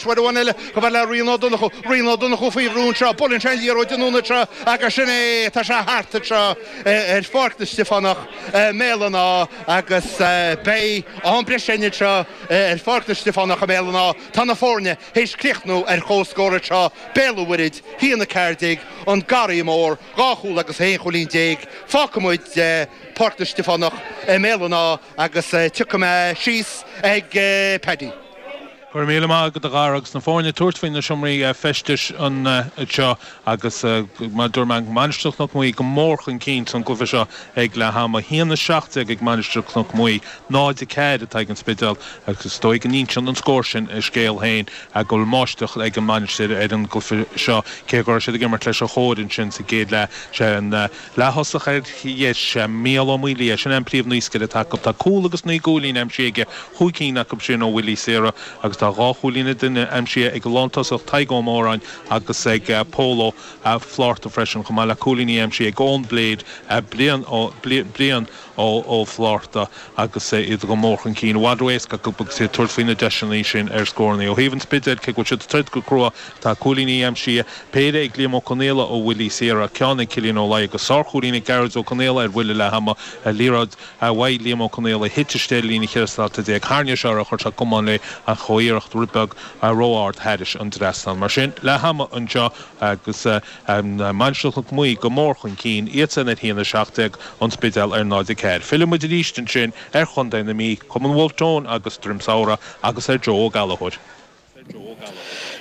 Haon eile, go maith le Rian Ó Donnchú, Rian Ó Donnchú faoi bhrú anseo, buaileann sé an liathróid anonn anseo agus sin é, tá sé thart anseo ar Pháirc na Stiofánach i mBéal an Átha agus beidh am breise ann anseo ar Pháirc na Stiofánach i mBéal an Átha. Tá na foirne théis críochnú ar chomhscór anseo, Béal an Mhuirthid, a haon a ceathair déag, An Garraí Mór, dhá chúl agus aon chúilín déag fágfaidh muid Páirc na Stiofánach i mBéal an Átha agus tiocfaidh muid síos ag Paddy. Go raibh míle maith agat a Dhara agus na foirne ag tabhairt faoi na seomraí feistis anseo agus mar a dúirt mé, Mainistir Chnoc Muaidhe go mór chun cinn san cluiche seo ag leath ama a haon a seacht déag ag Mainistir Chnoc Muaidhe, náid a ceathair atá ag an Spidéal agus is dóigh go n-inseann an scór sin a scéal féin go bhfuil máistreacht ag an Mainistir ar an gcluiche seo cé go raibh siad ag imirt leis an chóir ansin sa gcéad leath. Sé an Leath-thosach ar dheis, Mícheál Ó Maolaodha, sin é an príomhnaoscaire atá acu. Tá cúl agus naoi gcúilín aimsithe aige, chúig cinn acu sin ó bhuillí saora, agus tá dhá chúilín a duine aimsithe ag an lán-tosach Tadhg Ó Móráin agus ag Pól Ó Flárta freisin, chomh maith le cúilíní aimsithe ag Eoin Blade, Brian Ó Ó Flátharta agus iad go mór chun cinn. I bhfad éasca dóibh a bheith ag tabhairt faoi na deiseanna sin ar scórannaí ó thaobh an Spidéil, cé go bhfuil siad ag troid go crua. Tá cúilíní aimsithe, péire ag Liam Ó Conaola ó bhuillí saora, ceann ag Cillian Ó Laidhe agus sárchúilín ag Gearóid Ó Conaola ar bhuille leath ama, liathróid a bhuaigh Liam Ó Conaola a thit istigh ar líne 14 slata tharraing sé air, chuir sé camán léi ach chuaigh a iarracht rud beag ró-ard thairis an dtrasnán. Mar sin leath ama anseo. agus Mainistir Chnoc Muaidhe go mór chun cinn, iadsan ar 1, 17, An Spidéal ar 0, 4. Fillfidh muid arís ansin ar Chontae na Mí, Cumann Wolfe Tone agus Droim Samhraidh agus ar Joe Ó Gallachóir.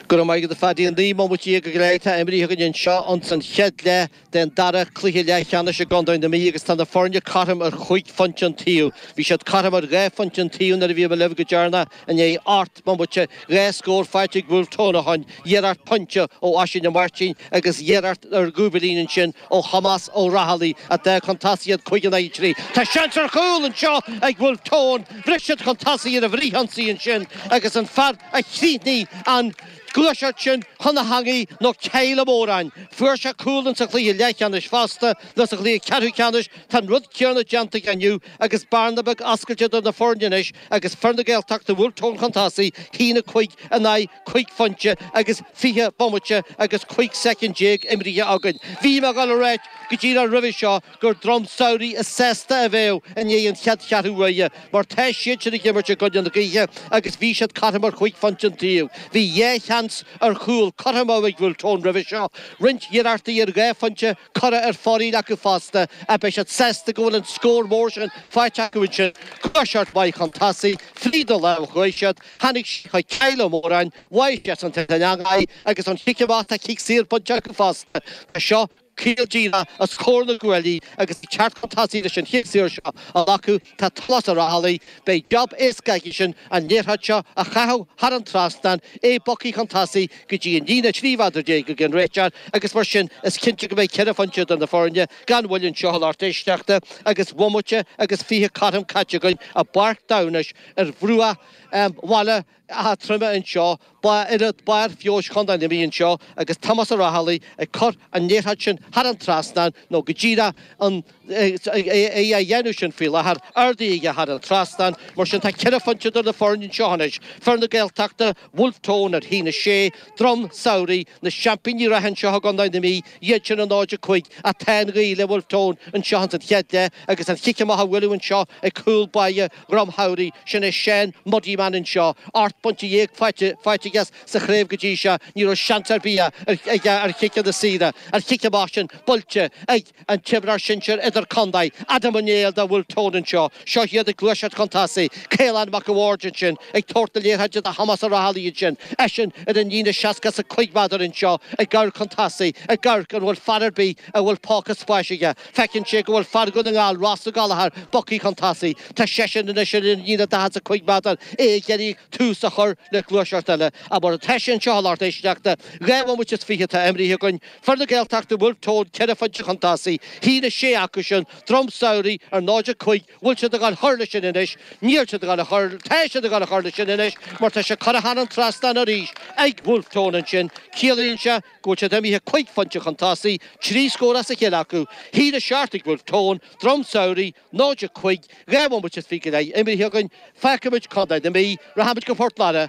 Go raibh maith agat a Phaddy, 19 mbomaite go díreach atá imrithe againn anseo ins an chéad leath. den dara cluiche leathcheannais i gContae na Mí agus tá na foirne cothrom ar chúig phointe an taobh. Bhí siad cothrom ar dhá phointe an taobh nuair a bhí mé libh go deireanach i ndiaidh ocht mbomaite dhá scór faighte ag Bhulf Tón ó shin iarracht pointe ó Oisín Ó Mairtín agus iarracht ar chúilín ansin ó Thomás Ó Raghallaigh a d'fhág chun tosaigh iad cúig in aghaidh trí. Tá seans ar chúl anseo ag Bhulf Tón. Bhris siad chun tosaigh ar an bhfrithionsaí ansin agus an fear a chríochnaigh an gluaiseacht sin chun na heangaí nó Kyle Ó Móráin. Fuair sé cúl ins an chluiche leathcheannais fosta nó sa chluiche ceathrúcheannais tá an rud céarna déanta aige inniu agus bearna beag oscailte idir na foirne anois agus fir na Gaeltachta Bhulf Tón chun tosaigh a haon a cúig in aghaidh cúig phointe agus fiche bomaite agus cúig soicind déag imrithe againn. Bhí mé ag dul a ráit go díreach roimhe seo gur Droim Samhraidh is sásta a bheadh i ndiaidh an chéad cheathrú uaire, mar tá siadsan ag imirt i gcoinne na gaoithe agus bhí siad cothrom ar chúig phointe an taobh. Bhí dhá sheans ar chúl curtha amú ag Bhulf Tón roimhe seo, roinnt iarrachtaí ar dhá phointe curtha ar fóraoil acu fosta, ach beidh siad sásta go bhfuil an scór mór sin faighte acu ansin. Gluaiseacht mhaith chun tosaigh fríd an lár chuaigh siad, tháinig sé chuig Cill Ó Móráin, bháigh seisean san eangach í agus ón chic amach tá cic saor bainte acu fosta anseo. Feall déanta os comhair na gcuaillí agus ag teacht chun tosaigh leis an chic saor seo a ghlacadh, tá Tomás Ó Raghallaigh. Beidh jab éasca aigesean an liathróid seo a chaitheamh thar an trasnán, é bogtha chun tosaigh go dtí an líne 13 mhéadar ag an réiteoir agus mar sin is cinnte go mbeidh ceithre phointe idir na foirne gan mhoill anseo a lucht éisteachta agus bomaite agus fiche cothrom caite againn i bPáirc Damhnais ar bhruach Bhaile Átha Troim anseo. Páirc barr feabhais Chontae na Mí anseo agus Tomás Ó Raghallaigh ag cur an liathróid sin thar an trasnán, nó go díreach an é á dhéanamh sin faoi láthair, ardaithe aige thar an trasnán. Mar sin, tá ceithre phointe idir na foirne anseo anois, fir na Gaeltachta, Bhulf Tón ar a haon a sé, Drom Samhraidh, na seaimpíní reatha anseo i gContae na Mí, iadsan ar 0-5. Ach tá an ghaoth le Bhulf Tón anseo ins an chéad leath agus an chic amach á bhualadh anseo ag cúl báire Dhroim Samhraidh, sin é Seán Muddiman anseo. Ocht bpointe déag faighte aige sa chraobh go dtí seo. Ní raibh seans ar bith aige ar chiceanna saora. An chic amach sin buaite ag an imreoir sinsir idir-contae, Adam Ó Néill de Bhulf Tón anseo. Seo iad ag gluaiseacht chun tosaigh. Caolán Mac a' Bhaird ansin ag tabhairt na liathróide do Thomás Ó Raghallaigh ansin. Eisean ar an líne seasca is a cúig mhéadar anseo ag amharc chun tosaigh, ag amharc an bhfuil fear ar bith a bhfuil póca spáis aige. Feiceann sé go bhfuil fear Dhún na nGall, Ross Ó Gallchóir, bogtha chun tosaigh. Tá seisean anois ar an líne daichead is a cúig méadar, é ag iarraidh tús a chur le gluaiseacht eile. Ach mar atá sé anseo a lucht éisteachta, dhá bhomaite is fiche atá imeartha againn. Fir na Gaeltachta, Bhulf Tón, ceithre phointe chun tosaigh. A haon a sé acusan, Droim Samhraidh ar 0-5. Bhfuil siad ag gabháil a chur leis sin anois? Níl siad ag, tá siad ag gabháil a chur leis sin anois mar tá sé curtha thar an trasnán arís ag Bhulf Tón ansin. Ciallaíonn sé. go bhfuil siad imithe cúig phointe chun tosaigh, trí scór as a chéile acu, a haon a seacht ag Bhulf Tón, Droim Samhraidh, 0-5, dhá bhomaite is fiche go leith imithe againn, fágfaimid Contae na Mí, rachaimid go Port Láirge,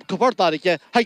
go Port Láirge, chuig.